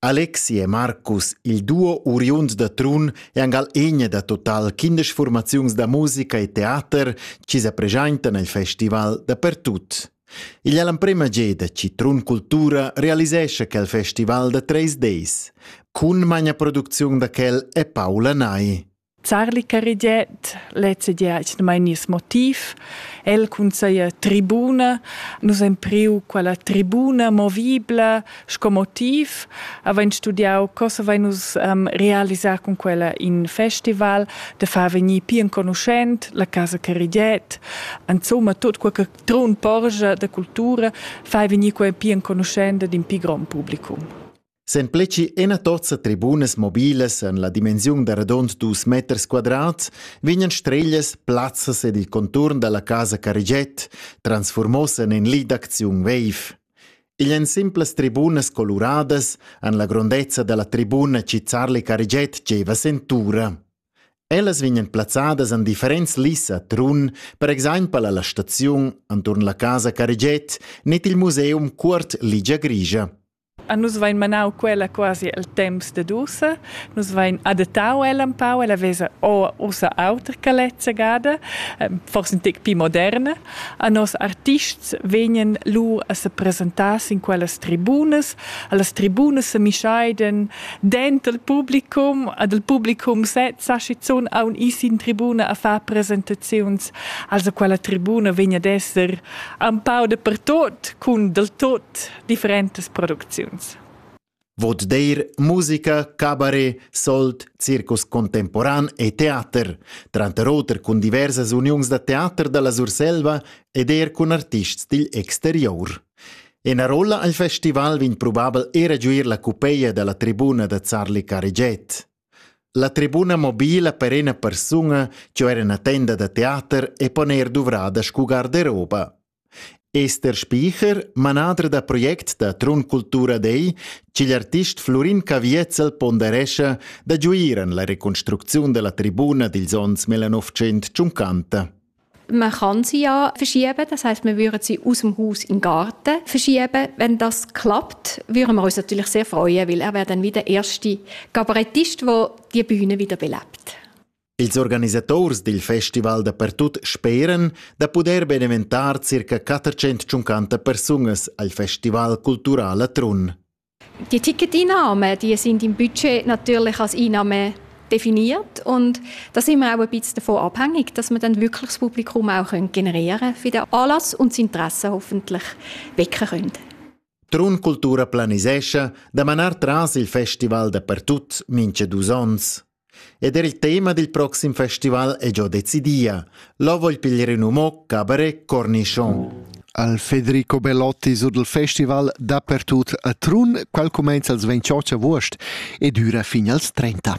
Alexi e Marcus, il duo uriund da Trun, è angal egna da total quindesch formaziuns da musica e teater chi sa preschaintan al festival dapertut. Igl è l'emprema geda chi Trun Cultura realisescha quel festival da treis deis. Cun magna producziun da quel è Paula Nai. Zarli Carigiet, lezzegia es mai nies motiv. El cunseia tribuna. Nus hem priu quella tribuna movibla sco motiv. Avain studiau cosa vai nus um, realisar cun quella in festival, de far vegnir pi enconuschent la casa Carigiet. Insomma, tot quel che trun porgia de cultura fai vegnir quella pi enconuschente d'un pi grand publicum. Sempleci ina tozza tribunas mobilas en la dimensiun da radund dus meters quadrats vegnan streglias plazzas ed il conturn dalla casa Carigiet transformos en in lit d'acziun veiv. Igl èn simplas tribunas coluradas en la grondezza dalla tribuna Cizzarli Carigiet gieva sentura. Ellas vegnan plazzadas en differents lis a Trun, per exempel alla staziun enturn la casa Carigiet net il museum Cuort Ligia Grigia. A nus vain manau quella quasi el temps dad ussa. Nus vain adattau ella empau, ella vesa ussa auter che lezza gada, forse in tec pli moderna. A nos artists vegnan lur a se presentar sin quellas tribunas. Allas tribunas se mischaidan denter il publicum, ad il publicum sez sa schizun aun is in tribuna a far presentaziuns. Also quella tribuna vegn ad esser empau dapertot, cun del tot differentas producziuns. Vot deir musica, cabaret, sold, circus contemporan e teater, tranter oter cun diversas uniuns da teater da la Surselva ed er cun artists digl exterior. Ena rolla al festival vegn probabel era giuir la cupeia da la tribuna da Zarli Cariget. La tribuna mobila per ena persuna, ciò era una tenda da teater e poner duvrada scu garderoba. Ester Spycher, manader da project da Trun Cultura dei, ch'igl artist Flurin Caviezel ponderescha da giuir en la reconstrucziun della tribuna dils onns 1950. Man kann sie ja verschieben, das heißt, wir würden sie aus dem Haus in den Garten verschieben. Wenn das klappt, würden wir uns natürlich sehr freuen, weil er wäre dann wie der erste Kabarettist, der die Bühne wieder belebt. Ils organisators dil festival dapertut speran da puder beneventar circa 450 persunas al festival cultural a Trun. Die Ticketeinnahmen die sind im Budget natürlich als Einnahmen definiert und da sind wir auch ein bisschen davon abhängig, dass wir dann wirklich das Publikum auch generieren können für den Anlass und das Interesse hoffentlich wecken können. Trun Cultura planisescha da manar tras il festival dapertut mincha dus ons. Ed er il tema dil proxim festival è già decidia. Lo vogl piglier in umo cabaret Cornichon. Al Federico Bellotti sut il festival dapertut a Trun, quel cumenza als 28 august e dura fin als 30.